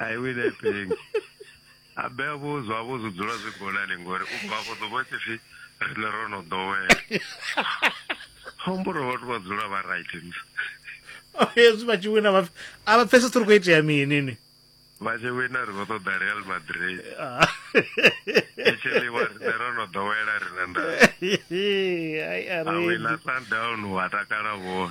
I will helping. Abe vho zwa vho zwi dzula zwi gonani ngori u bva vho ḓo vha tshi pfi rine ro no ḓowela. Homboro vhathu vha dzula vha right ni. Hezwi vha tshi wina vha a vha pfesesi uri khou itea mini ni. Vha tshi wina ri khou ṱoḓa Real Madrid. Actually wa rine ro no ḓowela rine nda. Ai a A wina re. Sundown wa takala vho.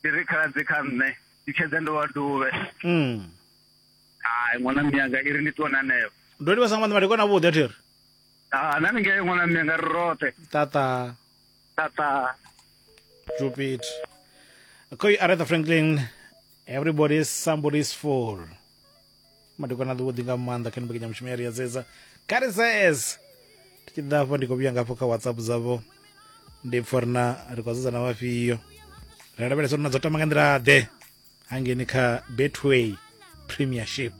ndi ri khaladzi kha nṋe ndi tshedza ndo wa duvhe mm. hai ṅwana miyanga i ri ndi ṱuwa na neo ndo livha sa nga maanḓa madekwana avhuḓi a thi ri Ah, nani ngei ṅwana miyanga ri roṱhe tata tata jupit koi aretha franklin everybody is somebody's fool madekwana a ḓuvhuḓi nga maanḓa kha nimbekenyamushumo mushumo ya ri ya dzedza kari says ndi tshi ḓa afho ndi khou vhuya ngafho kha whatsapp dzavho ndi pfha ri na ri khou dzedza na vhafhio ri a lavhelesa uri na dzo tama nga nḓila ḓe hangeni kha betway premiership